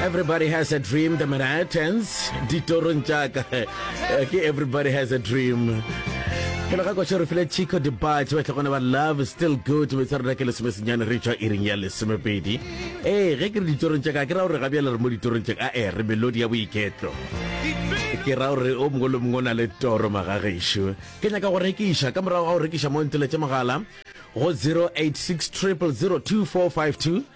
everybody has a dream the manhattans ditorong jaaka eh, ke everybody has a dream ke le ga kwa re file chico debate ba tlhogone ba love still good be tsa rona ke lesome senyane re tswa iring ya lesomepedi ee ge ke re ditorong jaaka ke ra gore ga bjale re mo ditorong jaaka a ee re melodi ya boiketlo ke ra gore o mongwe le mongwe o na le toro magagešo ke nyaka go rekiša ka morago ga go rekiša mo nteletše mogala go 086 0002452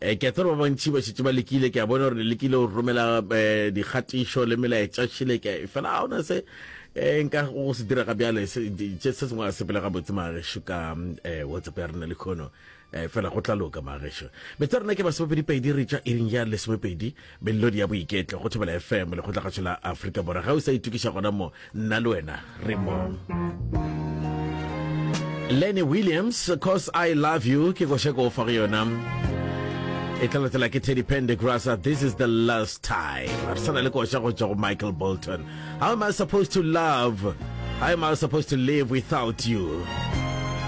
Eh, ke a tseba ba bantši ba šetše ba lekile ke a bona gore le lekile go romela eh, dikgatišo le melaetša šile ke fela ga ona se eh, nka go se dira ga bjale se se sengwe a sepele ga botse maagešo ka eh, whatsapp ya rena le kgono eh, fela go tla loka maagešo metse rena ke masomepedi pedi re tša iring ya lesomepedi Melodi ya Boiketlo go Thobela FM, lekgotlagatšo la Afrika Borwa. Ga o sa itokiša gona mo, nna le wena re mo. Lenny Williams, Cause I Love You, ke koša ko fa go yona. E tla latela ke Teddy Pendergrass, This is the last time. Re sana le koša go tšwa go Michael Bolton. How am I supposed to love? How am I supposed to live without you?